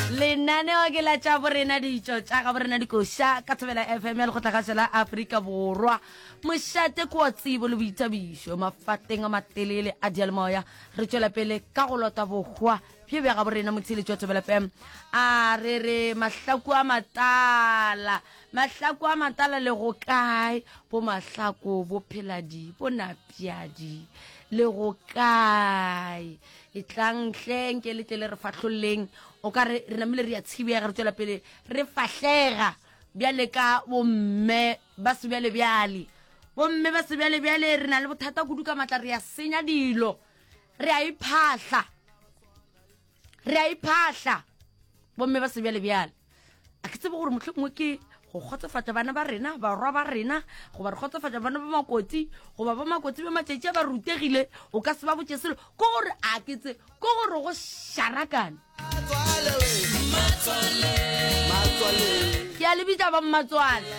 lenaneo ke la tša borena ditšo tša ga borena dikoša ka thobela fm ya lekgotlakgašo la aforika borwa mošate ko wa tsebo le boithabišo mafateng a matelele a dialemoya re tšwela pele ka go lota bohwa bjo bja ga borena motheletši wa thobela fm a re re mahlaku a matala mahlaku a matala le go kae bo mahlako bo pheladi bo napjadi le go kae Etlang hle nke le tle le re fahlolleng. O ka re re namile re a tshibega re tswela pele re fahlega bjale ka bomme ba sebjalebjale. Bomme ba sebjalebjale re na le bothata kudu ka matla re a senya dilo. Re a iphahla. Re a iphahla bomme ba sebjalebjale. a ke tsebe gore motlho mongwe ke go kgotsofatsa bana ba rena barwa ba rena goba re kgotsofatsa bana ba makotsi goba ba makotsi ba matšatši a ba rutegile o ka se ba botse selo ko gore a ke tse ko gore go sharakane ke a le bitša bammatswale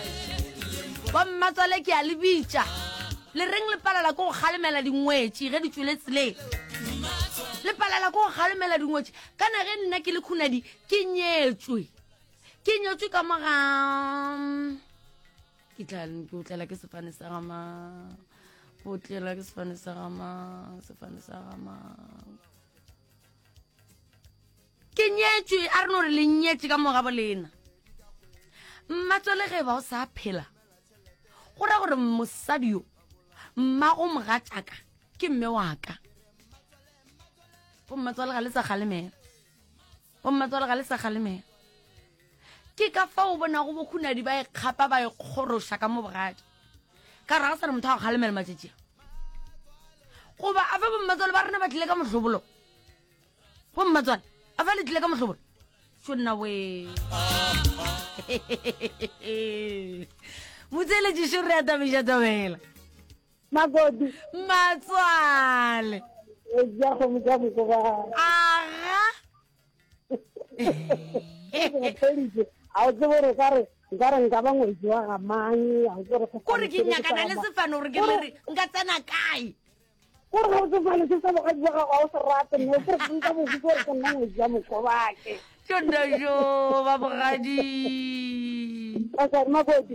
bammatswale ke a le bitša le reng le palela ko go kgalemela dingwetši ge di tswele tseleng le palela ko go kgalemela dingwetši kana ge nna ke le khunadi ke nyetswe ke nyetswe ka moga ke tla ke otlela ke sefane sa gama ke otlela ke sefane sa gama sefane sa gama ke nyetswe a re no re le nyetse ka moga bolena mmatswale ge ba o sa phela go ra gore mosadi yo mmago mogatšaka ke mme wa ka bo mmatswale ga le sa kgalemela bommatswale ga le sa kgalemela ke ka fa o bonago bokhunadi ba ekgapa ba ekgoroša ka mo bogadi ka gore ga sa re motho a kgalemela matšatšia goba a fa bommatswale ba rena ba tlile ka mohlobolo bommatswale a fa le tlile ka mohlobolo so nna we motseletšišo re atabeša tabela Magodu. Matswale. Ja go mo ja go ba. Aga. A o tsebo re ka re nka re nka ba ngwetsi wa ga mang a o tsebo re go. Gore ke nyakana le sefano gore ke re nka tsena kae. Gore ga o tsebo le se sa boga bua ga o se rate mme gore ke nka bogo gore ke nna ngwetsi ya mokobake. Ke nna jo ba bogadi. Ka sa magodu.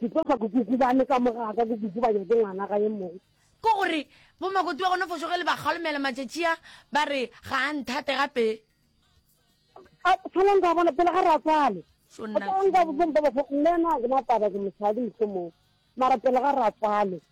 Diposa kukuku ba leka mo ga ka kukuku ba nyake ngwana ga ye mong. Ke gore bo makoti ba gona fošo ge le ba kgalomela matšatšia ba re ga a nthate gape. A tshwanang ka bona pele ga re a tswale. Tshwanang ka bona pele ga re a tswale. Nna na ke mataba ke mosadi mohlomong mara pele ga re a tswale.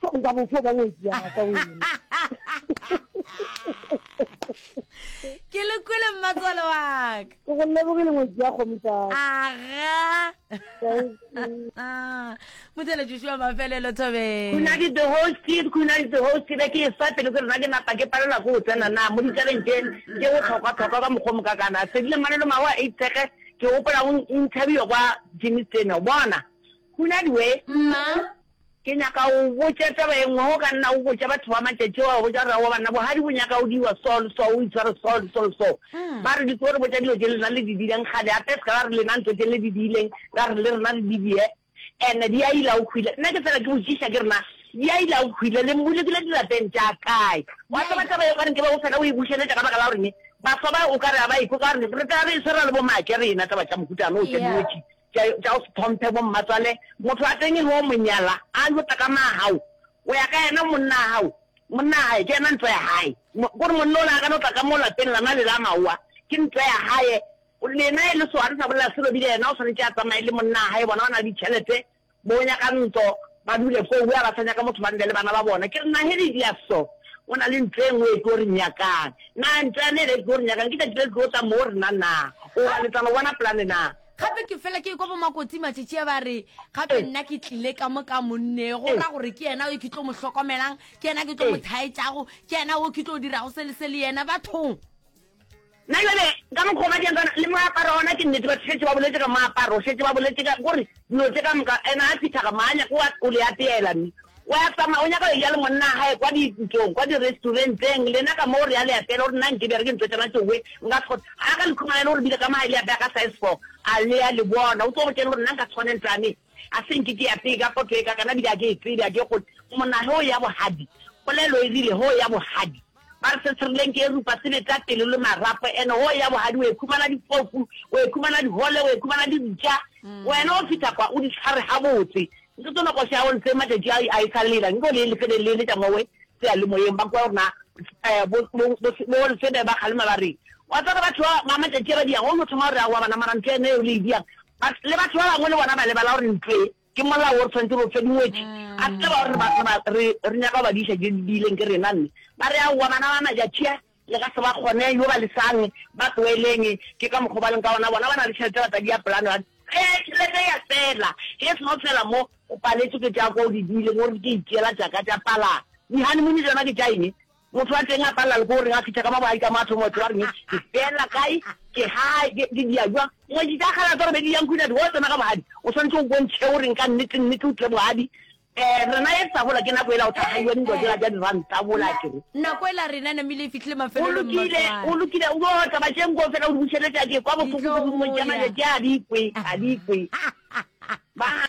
so nka go fo ka ngwetsi ya ka wena ke le kwele mmatswale wa ka ke go lebogile ngwetsi ya kgomisa aga motsele joshua mafelelo thobeng kuna di the host kid kuna di the host kid ke sa pele ke rena ke napa ke palela go tsena na mo ditabeng tše ke go tlhokwa tlhokwa ka mokgwa moka kana sedile manelo mawa a itshege ke gopola go interview kwa jimmy steno bona kuna di we mma Ke nyaka go go botša taba ye nngwe. Ge o ka nna o botša batho ba matšatši a, wa botša gore, Aowa banna, bogadi bo nyaka go diwa so le so, o itshware so le so le so. Ba re di tlo re botša dilo tše lena le di diileng kgale, gape se ka ba re lena ntho tše le di diileng, ra re le rena re di die. And di a ila go hwile. Nna ke fela ke botšiša ke re, Na di a ila go hwile? Le mbolokile dirapeng tša kae? Wa tseba taba ye o ka re nke be go fela o e bušeletša ka baka la goreng baswa ba o ka re ga ba ekwe ka gore re tla be e se ra le bomaake rena taba tša mohuta wo, tša dinotšhi. Tša, tša o se tlhomphe bo mmatswale. Motho wa teng ge o mo nyala, a lota ka maagau, o ya ka yena, monna a gau, monna a gae ke yena ntlo ya gae. Mo, kore monna o le a ka no tla ka mo lapeng lana le la maowa, ke ntlo ya gae. Lena e le swa, re sa bolela se Robile, yena o swanetše a tsamaye le monna a gae, bona ba na le ditšhelete, Bo nyaka ntlo ba dule fo where ba sa nyaka motho ba nne le bana ba bona. Ke re na he re dia so go na le ntlo e nngwe e tlo re nyakang. Na ntlo ya ne le tlo re nyakang ke tšatši le le tlo tla mo re na na goba le tla no bona plane na. Gape ke fela ke ekwa bo Makoti Matšetšea ba re gape nna ke tlile ka mo ka monne go ra gore ke yena yo ke tlo mo hlokomelang, ke yena ke tlo mo thaetšago, ke yena wo ke tlo dirago se le se le yena bathong. Na jale ka mokgwa o ba dirang ka ona, le moaparo ona, ke nnete, ba šetše ba boletše ka moaparo, šetše ba boletše ka, go re, dilo tše ka moka. Yena a fihla ga maa, a nyaka wa go le apeela, mme wa ya tsamaya, o nyaka go eja le monna wa gae kwa diputsong, kwa diresturenteng, lena ka moo re ya le apeela. O re, Nna nkebjare ke ntho tšona tšowe, nka se kgone. Ga a ka le khumana yena, o re bile ka maa, le apea ka size four, a le a le bona. O tlo go tšere gore nna nka se kgone ntho ya me, a se nke ke apee ka poto e kaakana, bile a ke e tsebe, a ke kgone. Monna, hee o ya bohadi, polelo e rile, hee o ya bohadi. Ba re se serileng ke erupa, se beta pelo le marapo, and hoo ya bohadi o ekhumana dipofu, o ekhumana dihole, o ekhumana dibja, wena o fitha kwa o di tshware gabotse. Nke tsono koša ya go se matšatši a a e sa lela, nke o le lefede le le tša mowe seyalemoyeng, ba kwa rena bo bo bo bo lefede ba kgalema ba re, wa tseba batho ba ba matšatši a ba diyago, o no thoma go re aowa bana mara ntlo ya nna yeo le e diyang, but le batho ba bangwe le bona ba lebala gore ntlo e Ke molao o re tshwanetse re o fe dingwetši. A se ke ba gore re ba- re re nyaka go ba diša tše di diileng ke rena mme. Ba re, Aowa bana ba Majatšia, le ka se ba kgone, yo ba lesang, ba tloeleng. Ke ka mokgwa o ba leng ka wona. Bona ba na le tšhelete, ba tla dia pelano ya. Ge tšhelete ya fela, ge e se no fela mo, o paletswe ke tša kwa o di diileng, o re ke itšeela tša ka tša palano. Di-honeymoon tšona ke tša eng? Motho wa teng a palela le ko reng a fitha ka mabadi ka matho moetlo wa reng ke fela kae ke hae ke ke dia jwa mo di tla khala tsore be di yang kwina di wa tsena ka bogadi o santse o bontšhe o reng ka nnete nnete o tle bogadi eh rena e tsa bola ke nako ela o tla haiwa ni dojela ja di run tsa bola ke re nako ela rena na mile fitlhile mafelo o lokile o lokile o bo tsa ba jeng go fela o bušeletsa ke kwa bofuku go mo jana le ja di kwe a di kwe ba